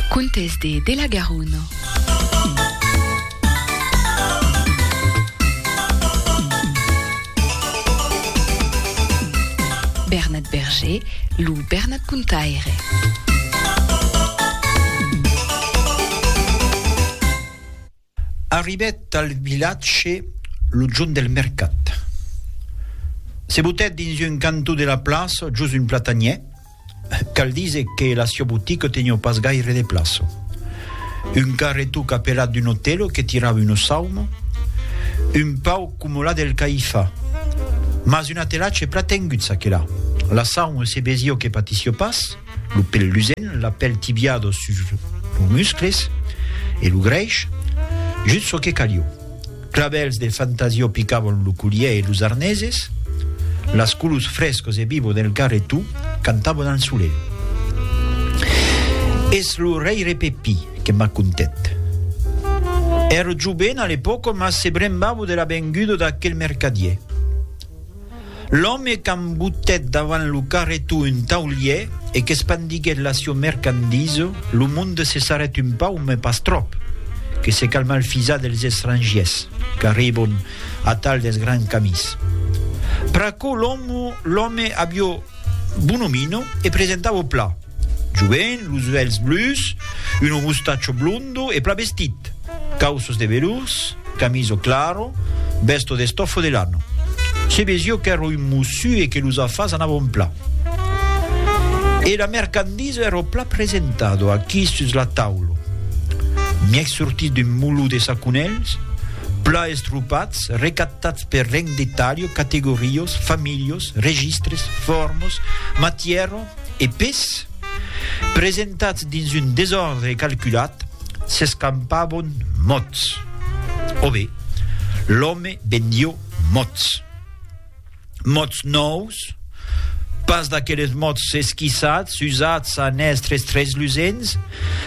Contes de de la Garona. Bernat Berger, lo Bernat Contaire. Arribèt al vilatge lo jorn del mercat. Se botèt dins un cantó de la plaça, jos un platanièr. Cal díser que la siá botica teniá pas gaire de plaça. Un carretó capelat d'un otèlo que tirava una sauma, un pauc coma la del Caifà, mas un atelatge plan tengut, çaquelà. La sauma se vesiá que patissiá pas. Lo pèl lusen, la pèl tibiado sus los muscles e lo grèish, just çò que calió. Clavèls de fantasió picavan lo collièr e los arneses, las colors frescos e vivos del garretó cantavan al solelh. Es lo rèire Pepí que m'a contet. Èra joven a l'epòca mas se brembava de la venguda d'aquel mercadièr. L'òme qu'embutèt davant lo carreton un taulièr e qu'espandiguèt la sieu mercandisa, lo monde se sarrèt un pauc, mas pas tròp, que se calma el fisar dels estrangièrs qu'arribon atal dels grands camins. Pr'aquò l'òme avió bonomino e presentava o plat. Joven, los uèlhs blus, un mustacho blondo e pla vestit, cauços de velurs, camiso claro, besto de stofo de lano. Se vesió qu'èro un mossu e que los afars anavon pla. E la mercandisa èro pla presentado aquí sus la taula. Mièg sortit d'un moló de saconèls, pla estropats, recaptats per reng de talho, categorios, familhos, registres, fòrmos, matièro, e pes, presentats dins un desòrdre calculat, s'escampavon mots. O be, l'òme bendió mots. Mots nòus, pas d'aqueles mots esquissats, usats a nèstres treslusents,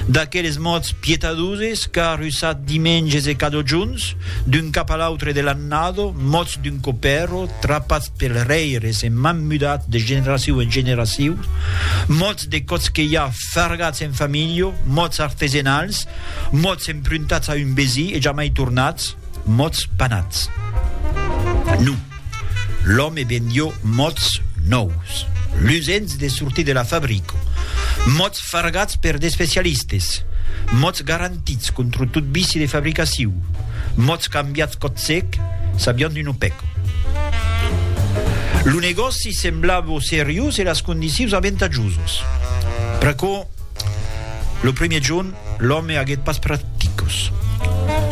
d'aqueles mots pietadoses car usats dimenges e cadojons, d'un cap a l'autre de l'annado, mots d'un copèrro, trapats Pels rèires en m'an mudat de generacion en generacion, mots de còts que i a fargats en familha, mots artesenals, mots empruntats a un vesí e jamai tornats, mots panats. Non, l'òme vendió mots nòus, lusents de sortir de la fabrica, mots Fargats per d'especialistes, mots garantits contra tot vici de fabricaciu, mots cambiats còt-sec, sabián d'un opèco. Lo negòci semblava seriós e las condicius aventajosas. Pr'aquò, lo primièr jorn, l'òme aguèt pas pr'articles.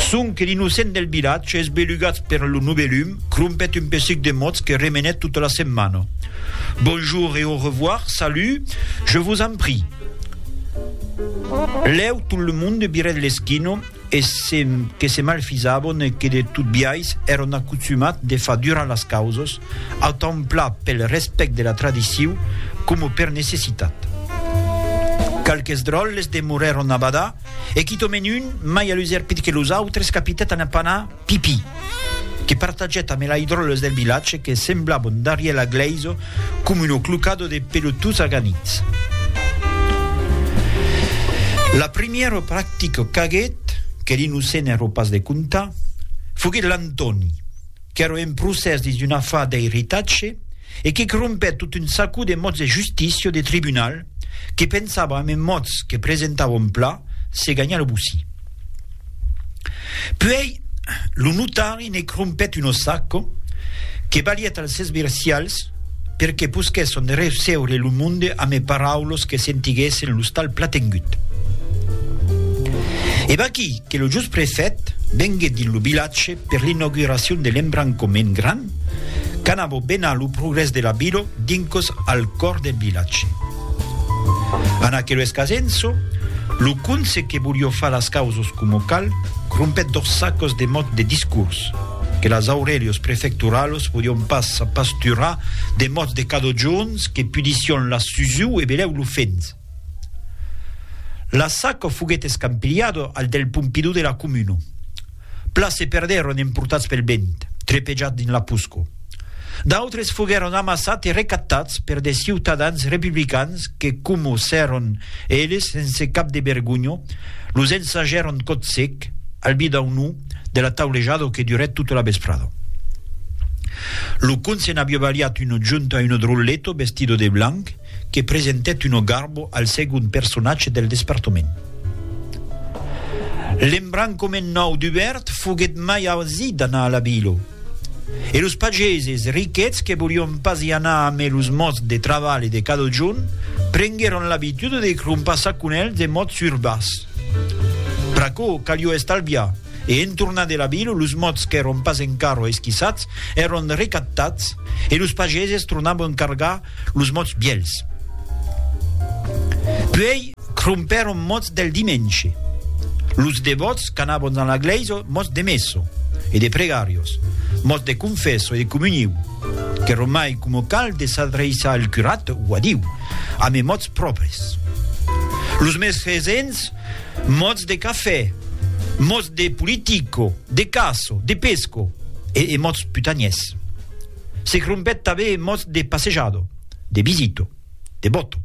Sonque l'innocent del vilatge, esbelugats per lo novèlum, crompèt un pesuc de mots que remenèt tota la setmana. Bonjour et au revoir, salut, je vous en prie. Lèu tot le monde virèt l'esquina e se que se malfisavon e que de tot biais èron acostumats de far durar las causas, autant pla pel respèct de la tradiciu coma per necessitat. Qualques dròlles demorèron a badar e quitament un, mai a l'userpit que los autres, capitèt a ne pas anar, Pipi, que partaget amé laidròles del vilatge que semblab un darrièl a gleiso com un oclucado de pelotuts aganits. La primièro practico qu'aguet, que li no se n'èro pas de contar, foguet l'Antòni, qu'èro en procès dins un afar d'eiritatge, e que crompèt tot un sacó de mots de justícia o de tribunal que pensavam en mots que presentavom pla se ganhar lo bossí. Puèi lo notari ne crompèt un ossacó que balièt als esvircials per que posquèsson de receure lo monde ame paraulos que sentiguèssen lo stal platengut. E vaquí que lo just prefèt venguèt dins lo vilatge per l'inauguracion de l'embrancament grand, Canabo bena lo progrès de la vilo dincos al còr del vilatge. Ana que lo escasenço, lo conse que volió far las causos coma cal, crompèt dos sacos de mòt de discors, que las aurelios prefecturalos podion pas apasturar de mòts de cadojorns que pudission las susiu e belèu lo fens. Las saco foguèt escampilhado al del Pompidou de la comuna. Plan se perdèron emportats pel vent, trepejats dins la poscor. D'autres foguèron amassats e recatats per de ciutadans republicans que comossèron eles sense cap de vergonha, los ensajèron còth sec, al bidaunò de la taulejada que durèt tota la vesprada. Lo conse n'aviá balhat una junta, un drolleto vestido de blanc, que presentèt una garbo al segond personatge del despertament. L'embrancament nau dubèrt foguèt mai ausit d'anar a la vila, e los pageses riquets que volián pas i anar amé los mots de travalh e de cadojorn prenguèron l'abitude de crompar saconèls de mots urbas. Pr'aquò calió estalviar, e en tornar de la vila los mots qu'èron pas encara esquissats èron recaptats e los pageses tornavan cargar los mots vièlhs. Puèi crompèron mots del dimenge. Los devòts qu'anavon dans la glèisa, mots de messo e de pregarios, mots de confesso e de comuniu, qu'èron mai coma cal de s'adreiçar al curat o a Diu, amb es mots pròpres. Los mes resents, mots de cafè, mots de politico, de caço, de pesco e e mots putanièrs. Se crompèt tanben en mòts de passejador, de visitor, de bòto.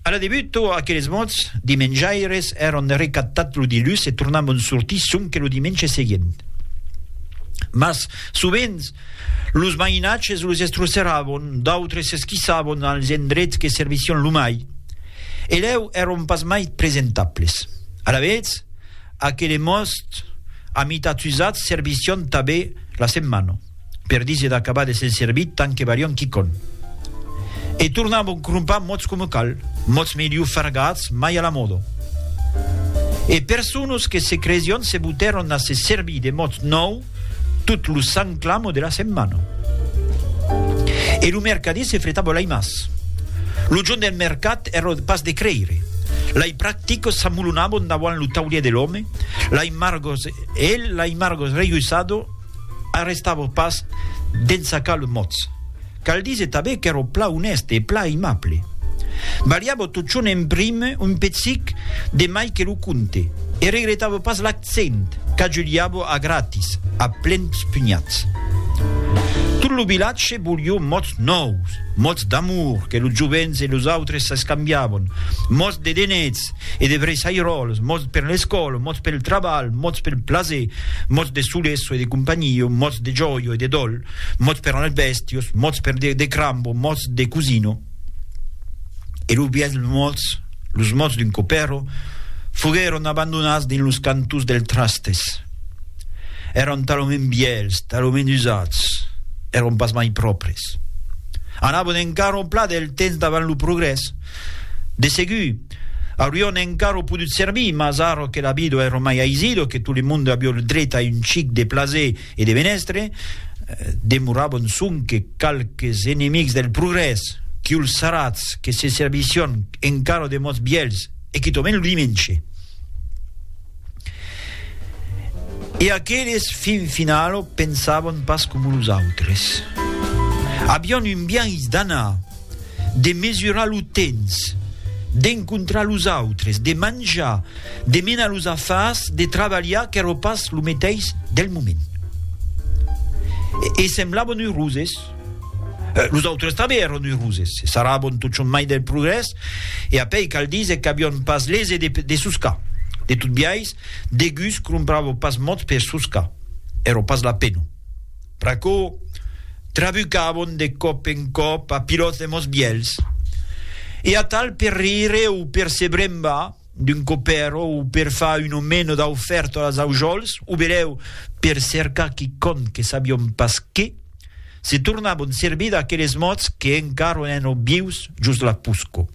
A la debut, tot aqueles mòts de menjaires èron recaptats lo dilhus e tornavan sortir sonque lo dimenge seguent. Mas, sovents, los mainatges los estrosseràvon, d'autres s'esquissavan als endrets que servissián lo mai, e lèu èron pas mai presentables. Alavetz, Aquele most a mitat usat servission tabé la setmana, per díser d'acabar de se'n servir tant que varion quicon. E tornavon crompar mots coma cal, mots melhor fargats mai a la moda. E personas que se cresion se botèron a se servir de mots nòu, Tot lo sant clamo de la setmana. E lo mercadier se fretava l'ai mas. Lo jorn del mercat èra pas de creire. L'ai practicos s'amolonavan davant lo taulièr de l'òme, l'ai margos e el, l'ai margos rejuissado, arrestava pas d'ensacar los mots. Cal díser tabé qu'èro pla onèste e pla aimable. Balhavo totjorn en brime un pezic de mai que lo conte, e regretavo pas l'accent qu'ajuliavo a gratis, a plens punhats. Tot lo vilatge volió mots nòus, mots d'amor que los jovents e los autres s'escambiavon, mots de denets e de vreissairòls, mots per l'escòla, mots pel trabalh, mots pel plaser, mots de soleço e de companhio, mots de jòio e de dòl, mots per anar bèstios, mots per dire de crambo, mots de cosino, e los bièlhs mots, los mots d'un copèro, foguèron abandonats dins los cantons dels trastes. Èran talament bièlhs, talament usats, èran pas mai pròpres. Anavan encara au plat del temps davant lo progrès. De segur, aurion encara podut servir, mas ara que la vida èra mai aisido, que tot le monde aviá lo dret a un chic de plaser, e de Menestre, demoravan sonque qualques enemics del progrès, qui'ls sarats que se servissián encara de mots vièlhs e quitament lo dimenge. E aqueles fin finalo pensavan pas coma los autres. Avián un biais d'anar, de mesurar lo temps, d'encontrar los autres, de manjar, de menar los afars, de trabalhar qu'èra pas lo meteis del moment. E semblavan euroses. Los autres tanben èran euroses, se sarravan totjorn mai del progrès, e apèi cal díser qu'avián pas lese de, de soscar. De tot biais, Degus cromprava pas mots per soscar, èra pas la pena. pr'aquò trabucavon de còp en còp a pilòt de mos bièlhs, e atal per rire o per se brembar d'un copèro o per far un o meno d'aufèrta als aujòls, o belèu per cercar quicòm que sabiom pas qué, se tornavon servir d'aqueles mots que encara ònen ò vius jos la pusco.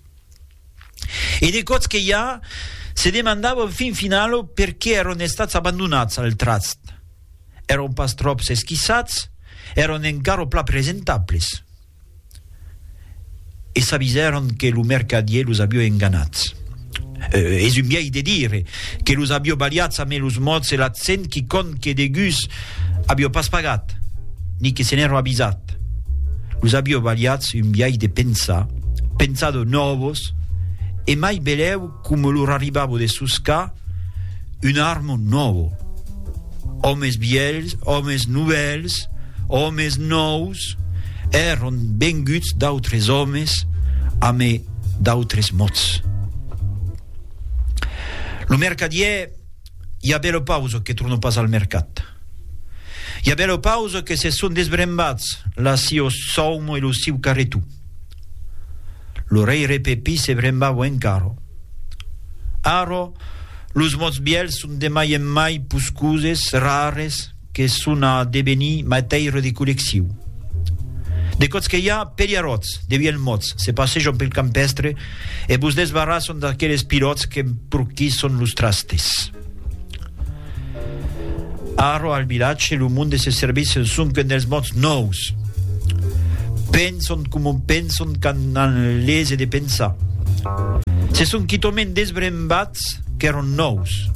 e de còps que ja se demandava en fin finala per qué èron estats abandonats al tratz. Èron pas tròps esquissats, èron encara pla presentables. E s'avisèron que lo mercadier los avió enganats. Es un biais de dire, que los avió balhats amé los mots e l'accent quicòm que degús Avió pas pagat, ni que se n'èro avisat. Los avió balhats un biais de pensar, pensar de nòvos, e mai belèu coma lor arribava de soscar un armo nòvo. Òmes vièlhs, òmes novèls, òmes nòus, èron venguts d'autres òmes ame d'autres mots. Lo mercadièr. i a bèlo pausa que torno pas al mercat. I a bèlo pausa que se son desbrembats la siò saumo e lo siu carretou. Lo reire Pepí se brembava encara. Ara, los mots bièlhs son de mai en mai puscoses, rares, que son a devenir matèira de collecciu. De còts que i a, peliaròts, de vièlhs mòts, se passejan pel campèstre e vos desbarrasson d'aqueles pilòts qu'emporquisson los trastes. Ara, al vilatge, lo monde se servís en sonquen dels mòts nòus. Penson coma penson quand an lese de pensar. Se son quitament desbrembat D'Estats qu'èron nòus.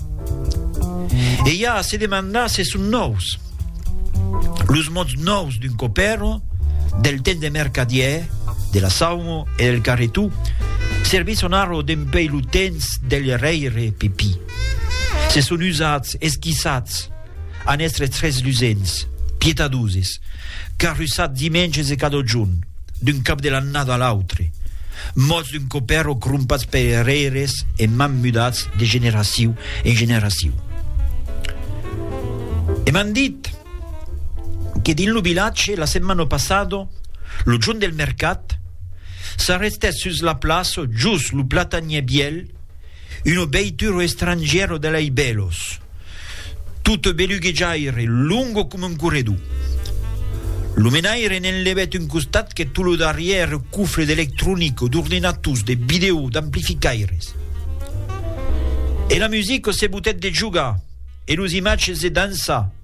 E i a a se demandar se son nòus. Los mots nòus d'un copèro, del temps de mercadièr, de la saumo e del carretó, servisson arro dempèi lo temps del rèire Pepí. Se son usats, esquissats. An èstre tres lusents, pietadoses, carrussats dimènges e cadojorn, d'un cap de l'annada a l'autre, mòts d'un copèr o crompats per errèires e man mudats de generaciu en generaciu. E m'an dit que dins lo vilatge, la setmana passada, lo jorn del mercat, s'arrestèt sus la plaça just lo platanièr vièlh, Uno beituro estrangiero de lei belos, toute beluguejaire, longo coma un corredor. Lo menaire n'enlevèt un costat que tot lo darrièr cofre d'electronica, d'ordinators, de vidèo, d'amplificaires. E la musica se botèt de jogar, e los imatges de dançar,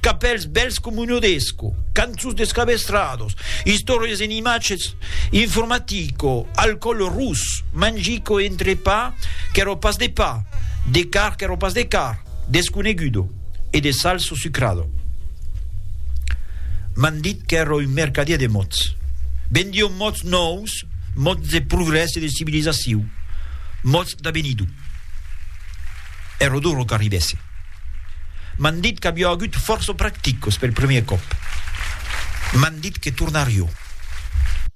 Capèls bèls coma un odesco, cançons de scabestrados, istòrias en imatges, informatico, alcòl rus, mangico e entrepà qu'èra pas de pa, de car qu'èra pas de car, desconegudo, e de salso sucrado. M'an dit qu'èra un mercadièr de mots. Vendió mots nòus, mots de progrès e de civilizacion, mots d'avenido. è ro duro qu'arribèsse. M'an dit qu'avió agut fòrça practicos pel primièr còp. M'an dit que tornarió.